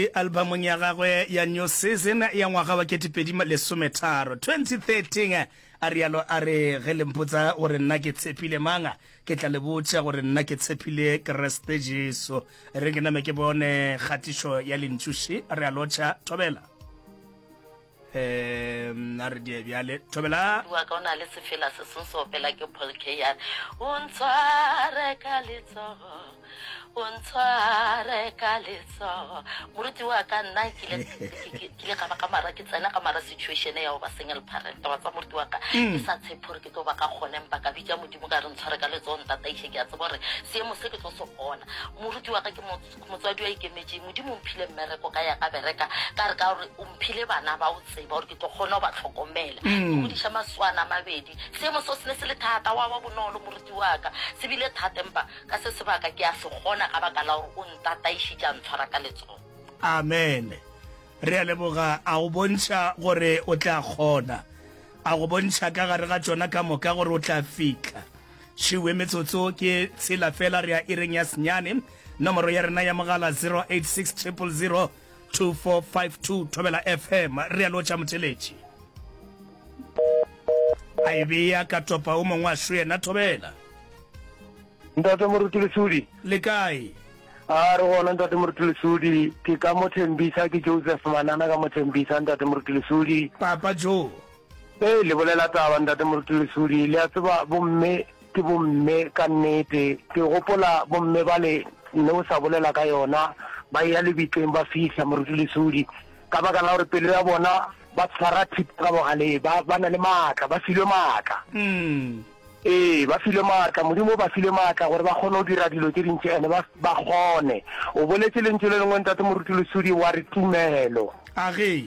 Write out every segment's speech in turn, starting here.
le albamong ya gagwe ya New Season ya ngwaga wa 2013, 2013, a realo a re, Ge le mpotsa gore nna ke tshepile mang, ke tla le botša gore nna ke tshepile Kreste Jesu. Re ke name ke bone kgatišo ya lentšu še, a realo Tša Thobela. um a re die bjale thobela wa ka o na le sefela se seng se opela ke paul keyar o ntshware ka letsogo o ntshware ka letsogo moruti wa ka nna ke ile ka ba ka mara ke tsena ka mara situation ya go ba single parent wa tsa moruti wa ka mm. ke sa tshepe gore ke tlo ba ka kgone mpa ka bitsa modimo ka re ntshware ka letsogo ntataiše ke a tsebo gore seemo se ke tlo se gona moruti wa ka ke mo Motswadi wa ikemetše, Modimo o mphile mmereko ka ya ka bereka ka re ka gore o mphile bana ba o tseba gore ke tlo kgona go ba tlhokomela. Ke mm. godiša maswana a mabedi. Seemo so se ne se le thata wa ba bonolo moruti wa ka. Se bile thata empa ka se sebaka ke a se kgona ka baka la gore o ntataišitše a ntshwara ka letsogo. Amen. Re a leboga a go bontšha gore o tla kgona. A go bontšha ka gare ga tsona ka moka gore o tla fitlha. Šiwe metsotso ke tshela fela re ya ireng ya senyane. Nomoro ya rena ya mogala 0860002452 Thobela FM, realo tša Motšeletši. A e bea ka topa o mongwe a šo yena Thobela. Ntate Moruti Lesudi. Le kae? A re gona Ntate Moruti Lesudi, ke ka mo Thembisa, ke Joseph Manana ka mo Thembisa Ntate Moruti Lesudi. Papa Joe. Hei le bolela taba ntate moruti lesodi le a tseba bomme ke bomme ka nnete ke gopola bomme bale ne o sa bolela ka yona ba ya lebitleng ba fihla moruti lesodi ka baka la gore pelo ya bona ba tshwara thipa ka bogaleng ba ba na le maatla ba filwe maatla mm. Ee, ba filwe maatla modimo o ba file maatla gore ba kgone go dira dilo tse dintši ene ba kgone o boletse lentšu le lengwe ntate moruti lesodi wa re tumelo a ge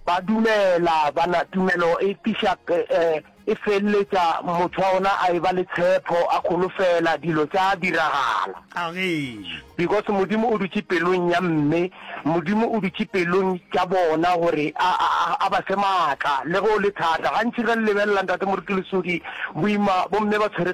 Ba dumela, ba na, tumelo e tliša, e, e feleletša motho wa gona a eba le tshepho, a kholofela, dilo tša diragala. Agee. Because Modimo o dutše pelong ya mme, Modimo o dutše pelong tša bona gore a, a, a, a ba fe maatla, le ge o le thata. Gantši ge le lebelela, Ntate Moruti Lesodi, boima, bomme ba tshwere ka.